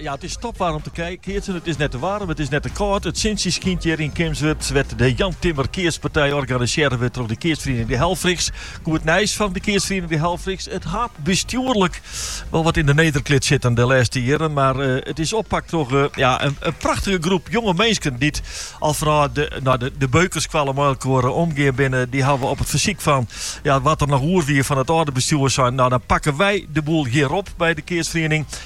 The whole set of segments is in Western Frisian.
Ja, it is topwaar om te keatsen. It is net te waarm, it is net te kâld. It sintsje skynt hjir yn Kimswert, wêr't de Jan Timmer keatspartij organisearre wurdt troch de keatsferiening De Helfrichs. Goed nijs fan de keatsferiening De Helfrichs, it hat bestjoerlik wol wat yn de nederklit sitten de lêste jierren, mar it is oppakt troch ja, in prachtige groep jonge minsken dy't al fanôf de, no, de, de beukerskoalle mei elkoar omgean binne. Dy hawwe op it fersyk fan ja, wat der noch oer wie fan it âlde bestjoer sein, no dan pakken wy de boel hjir op by de keatsferiening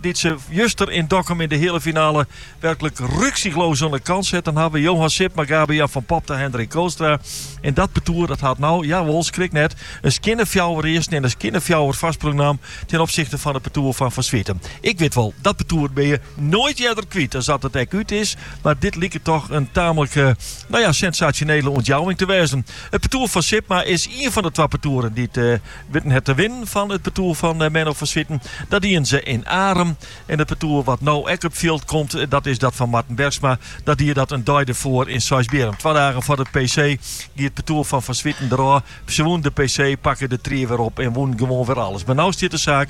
dy't se juster yn Dokkum yn de heale finale werklik rücksichtslos oan de kant setten hawwe. Johan Sipma, Gabe-Jan van Popta en Hendrik Kootstra. En dat partoer dat hat no, jawol, skrik net, in skjinne fjouwer earsten en in skjinne fjouwer foarsprong naam ten opsichte fan it partoer fan Van Zwieten. Ik wit wol, dat partoer binne je noait earder kwyt as dat it ek út is, mar dit liket toch in tamelijk, no ja, sensationele ûntjouwing te wêzen. It partoer fan Sipma is ien fan de twa partoeren dy't witten hat te winnen fan it partoer fan Menno van Zwieten. Dat dienen se yn Arum. En it partoer wat no ek op fjild komt, dat is dat fan Marten Bergsma. Dat die dat in dei derfoar yn Seisbierrum. Twa dagen foar de PC gie it partoer fan Van Zwieten derôf. Se wûnen de PC, pakke de tried wer op en wûnen gewoan wer alles. Mar no stiet de saak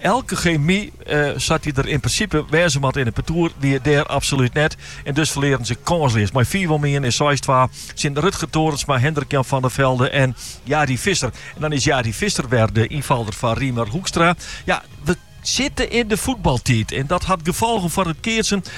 Elke gemy sa't dy der yn prinsipe wêze moat yn it partoer, wie dêr absolút net en dus ferlearen se kânsleas. Mei fiif om ien en seis twa tsjin Rutger Torensma, Hendrik Jan van der Velde en Jari Visser. En dan is Jari Visser wer de ynfalder foar Riemer Hoekstra. Ja, we sitte yn de fuotbaltiid en dat hat gefolgen foar it keatsen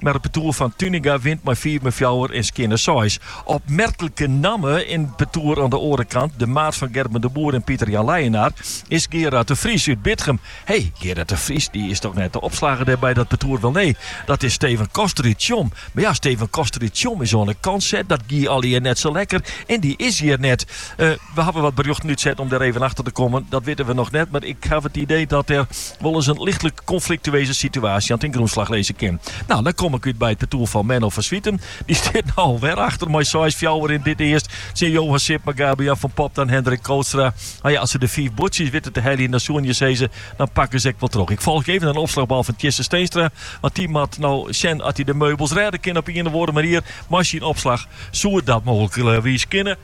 Mar it partoer fan Tuinenga wint mei fiif om fjouwer en skjinne seis. Opmerklike namme yn it partoer oan de oare kant, de maat fan Gerben de Boer en Pieter-Jan Leijenaar, is Gerard de Vries út Bitgum. Hé, Gerard de Vries dy is dochs net de opslagger dêr by dat partoer? Welnee, dat is Steven Koster út Tsjom. Mar ja, Steven Koster út Tsjom is oan de kant set. Dat gie allegear net sa lekker en dy is hjir net. We hawwe wat berjochten útset om dêr even achter te kommen. Dat witte we noch net, mar ik haw it idee dat der wol ris in lichtlik konfliktueuze situaasje oan ten grûnslach lizze kin. No, dan kom ik út by it partoer fan Menno van Zwieten. Dy stiet no alwer achter mei seis fjouwer yn dit earst tsjin Johan Sipma, Gabe-Jan van Popta en Hendrik Kootstra. No ja, as se de fiif buordsjes witte te heljen, dan soenen je sizze, dan pakken se ek wol troch. Ik folgje even in opslachbal fan Tjisse Steenstra, want dy moat no sjen oft hy de meubels rêde kin op ien of oare manier mei syn opslach. Soe dat mooglikwiis kinne?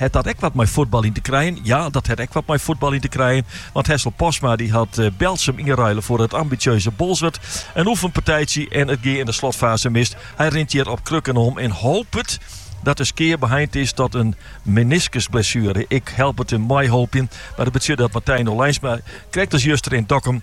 Hat dat ek wat mei fuotbal yn te krijen? Ja, dat hat ek wat mei fuotbal yn te krijen. Want Hessel Postma dy hat Berltsum ynruile foar it ambitsjeuze Bolsward. In oefenpartijtsje en it gie yn de slotfase mis. Hy rint hjir op krukken om en hopet dat de skea beheind is tot in meniskusblessuere. Ik help it him meihoopjen, mar it betsjut dat Martijn Olijnsma krekt as juster yn Dokkum.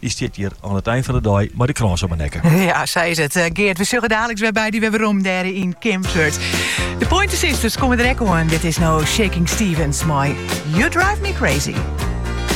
Dy stiet hjir oan it ein fan 'e dei mei de krâns om 'e nekke. Ja, sa is it. Eh, Geert, we sjogge daliks wer by dy wer werom dêr yn Kimswert. De Pointer Sisters komme der ek oan. Dit is no Shakin' Stevens mei You Drive Me Crazy.